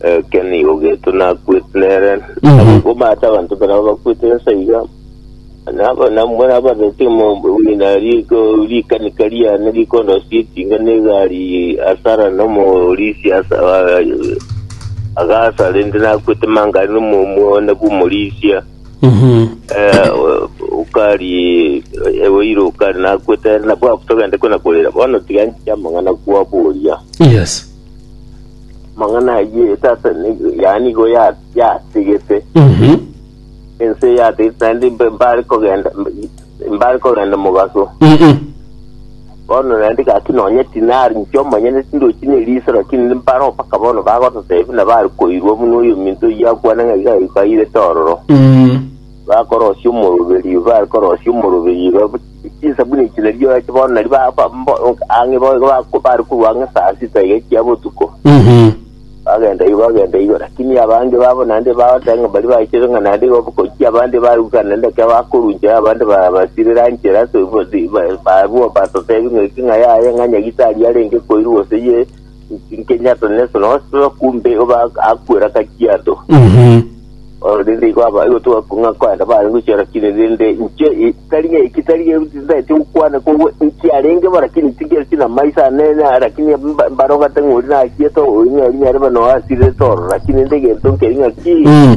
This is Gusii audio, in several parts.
Eke nigo geto nakwete nere, nagokomata abanto baraba bakwete ense iga, nabo namwe nabarete omogina riko rikanika riane rikondosia etinga negari asara nomorisi asa agasa rende nakwete mangari nomomwone bw'omorisia ukari eweiro ukari nakwete nabwo togende kona korera bono tiga nchiamang'ana kwaboria yes Amang'ana ayio tata ni- yaani nigo ya- yategete Mhm. ense yategete naende mbe- mbare kogenda mbe- mbare kogenda mogaso Mhm. bono naende gaki nonye tinari nki omonyene tindochi neriso lakini mbaro mpaka bono bagototebi na bari koirwa buna oyo minto oyio akwana ng'a iga iga airete ororo Mm. bakorosia omoroberio bari korosia omoroberio iga Chinsabuni echi nario nache bono nario ba- ba- mbo- ang'e bo- ba- bare korwa ang'e saa sita iga chia botuko Mhm. bagenda igo bagenda igo lakini abande babo naende bagoteba ng'a bari bachire ng'a naende igo obokoki abande baruka naende ekero bakoruncha abande ba- basirira nchera so- bo- di- ba- barwo batotebi ng'a eki ng'a yaye ng'a nyagitari arenge koirwa gose ye Nkenyato Nelson Oslo kumbe oba akwera kakiado Mhm. oro rende igo aba igo twakung'a kwaenda bare gochora kire rende nche i- tari ng'a eki tari ng'a titaeti gokwana kobwe nkiarenge bo lakini tigere tina maiso anene ah, lakini mba- mbarogete ng'ori nachiete oyo ng'a rinyare bano asirete oro lakini rende egento nkeri ng'a ki Mm.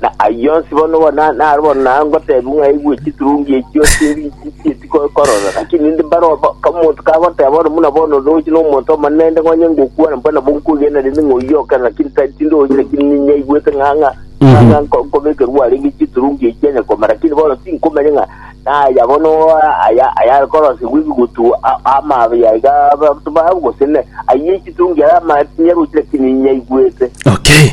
Na ayio onsi bono bono na- naro bono na- ngoteebia ng'a aigwe chiturungi echio chiri chieti ko- korora, lakini ninde mbare obo omonto kagoteeba ore buna bono ndoche na omonto omonene nde ng'onye ngokwana mbwene nabo nkoigena rende ng'a oyio oke, lakini ta- tindoche lakini ninyaigwete ng'a ng'a ng'a ng'a nko- nkobekerwa arenge chiturungi echio onye koma, lakini bono tinkomanya ng'a naya bono a- aya ayare korosegwa ebigutu a- amaabia iga abanto baabo gose ne ayio chiturungi ara ama- tinyarochi lakini ninyaigwete. Okay.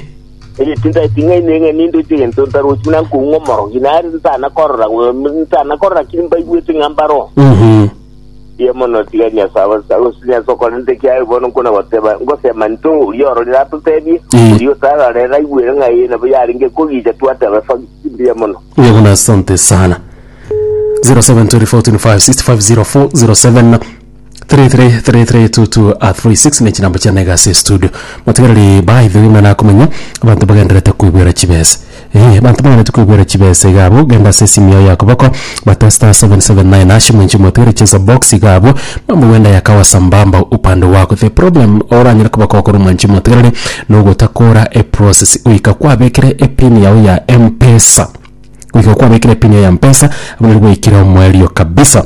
Erio tintaeti ng'aini ng'a nindoche egento ntarochi buna nkoung'a omorogi, nare nsana korora bwe- nsana korora ki mbaigwete ng'a mbaro. Mbuya mono tiga Nyasae abo- ase Nyasae okorente ekiagera bono nkona goteba, ngosema nto oria ororire atotebie, Mm. oria otararera aigwere ng'a eye nabo yarenge kogicha twateba efagi. Mbuya mono. Mbuya mono asante sana 0724456007 333322 ne chinamba chiane iga ase estudio motigareri baidha rende nakomenya abanto bagendererete koigwera chibesa eh abanto bagendererete koigwera chibesa iga abwo genda ase esimu yago ya koboko bata star seven seven nine hash moenche motigari chesa box iga abwo mambo gwenda yakawa sambamba upande wako the problem oranyare koba gokora moenche motigareri nogotakora eprocess goika kwabekire epin yago ya mpesa goika kwabekire epin yago ya mpesa abwo nari gwaikire omoerio kabisa.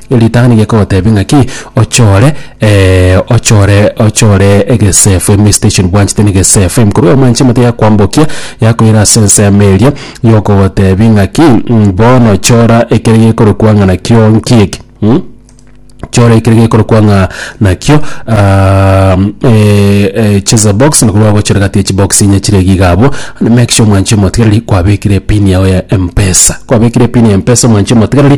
Ritang'ani gekogoteebia ng'a ki? Ochore, eh, ochore ochore egesefu, emisitation bwanchete na egesefu, ekorwa eoma inche emate yakoambokia, yakoira ase ensemo eria, yokogoteebia ng'a ki? Mh, bono chora ekere gekorokwa ng'a nakio nki eke? Mh, chora ekere gekorokwa ng'a nakio eh eh cheza box, nakorwa ogochora egati ya chibox inye chire iga iga abwo, make sure mwanchi omotigereri kwabekire epini yago ya mpesa. Kwabekire epini ya mpesa mwanchi omotigereri,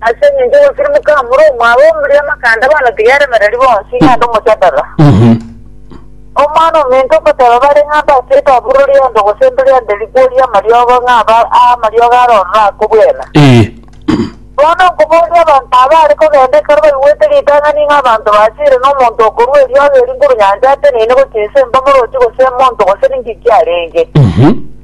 Ase engencho ogosirimoka amure omwabo omria amakanda banotige aremereri bonsi, na ande omochadara. Omwana ominto okoteba bare ng'a mbacheete aburori ande ogosemberia ande rikworia amariogo ng'a aba aa amariogo are ororo akobwena. Ee. Bono nkoboria abanto abaare kogenda ekero baigwete ritang'ani ng'a abanto basiire na omonto okorua eriogo eri nguru nyancha ateneine gochia ense mbamorochi gose emonto gose ninki kiarenge.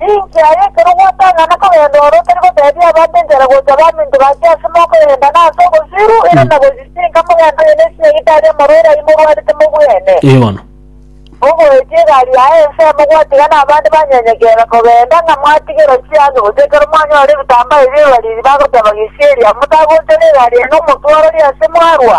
Ninki aye ekero gwatang'ana kogenda ore otari goteebia abanto enchera gocha baminto bache ase mokoyenda na ase obosiru, ere na gochisinka mogende aye ne chinyagita aria amarwaire ayio morwarete mobwene? Ee bono. Mogoetie egari yaye ensemo gwatiga nabande banyenyekere kogenda, ng'a mwatigerwa chianga gose ekero mwanyore ebitambaa ebio abariri bagoteeba, Gesieri, amo tagonchore egari yaino omotwarori ase mwarwa?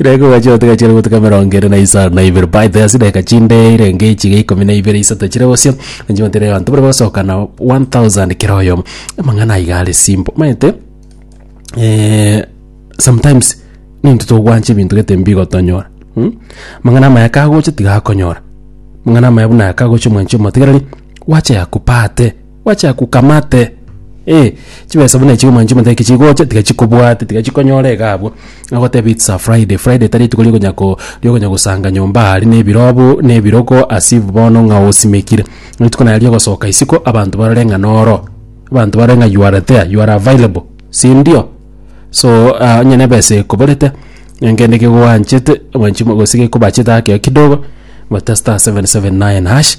Reko gacha otega chire goteka mirongo ere na isano na ibere by the asi deka chinde irenge ichiga ikomi na ibere isato chire gosio nchi batire bantu bari basoka na 1000 kira oyo amang'ana aiga are simple maete eh, sometimes nintu togwancha ebinto gete mbigotonyora hmm? mang'ana amaya kagocha tigakonyora mang'ana amaya buna kagocha omwanchi omotigareri wacha yakupate Gwachaka ukamate eh chibesa buna echi omanyete chimotebia kichigocha tiga chikobwate tiga chikonyora iga abwo nagotebi it's a Friday, Friday tari rituko riokonya ko riokonya gosanga nyomba aria na ebirobu na ebiroko as if bono ng'a osimekire. Rituko naye riogosoka isiko abanto barore ng'a noro abanto barore ng'a you are there you are available sindio? So ah onye na ebesa ekoborete nyankende kende kegwanchete omanyete chimo gose gekobachete akeyo kidogo but star seven seven nine hash.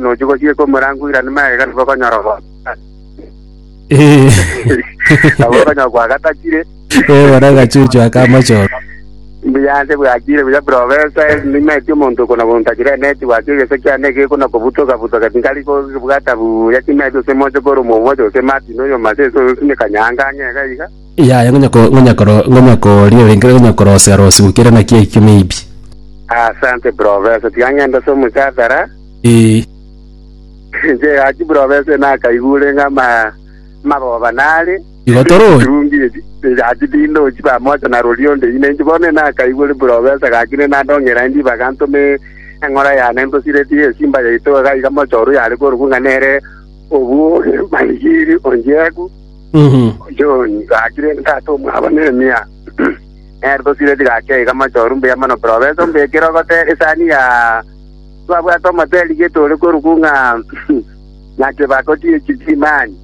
Nochi gochia komorangura na magega nigo okonyora obo- Eh, nabo okonyora kwagatakire eh, bono agachuchu akamochoro. mbuyanse bwachire buya profesa nimeti omonto okona bontachire neti gwaki egese kiane gekona kobutoka butoka tinkari kobwata buya timeti ose moche kore omomoche ose martin oyo mase ese oyo sine kanyanga ang'ega iga Yaya, ngonya ko, ngonya koro, ngonya koria orenge, ngonya korosea rosigu kera naki ekio maybe. Asante professor, tiga ng'ende ase omochatara. Ee. Inche gaki professor nakaigure ng'a ama amagoba nare. Igo torochi. Kirungi eki, gaki tindochi pamoja na rori onde ine inche bono nakaigure professor gaki ne nandongera ende ibaga ntome eng'ora yane ntosiretie esimba yaito iga iga mochorwe yare korokwo ng'a nere obu ore maigiri onjeku. John gachire engaki omwabo Nehemia, nerito chire chigachia iga amachoru mbuya mono buna obese mbuya ekerogote esani ya twabwate omoteli getore koruku ng'a naki bakoti ye chitimani.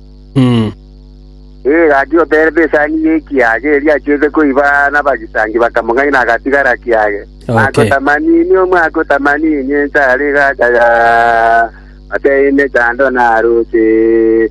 Ee, gachia gotereba esani y'ekiage eria achiete koiba nabagisangi bakamong'aina agatigara kiage. Mwako tamanini, omwako tamanini enchara igachaya, mateine chando naroche.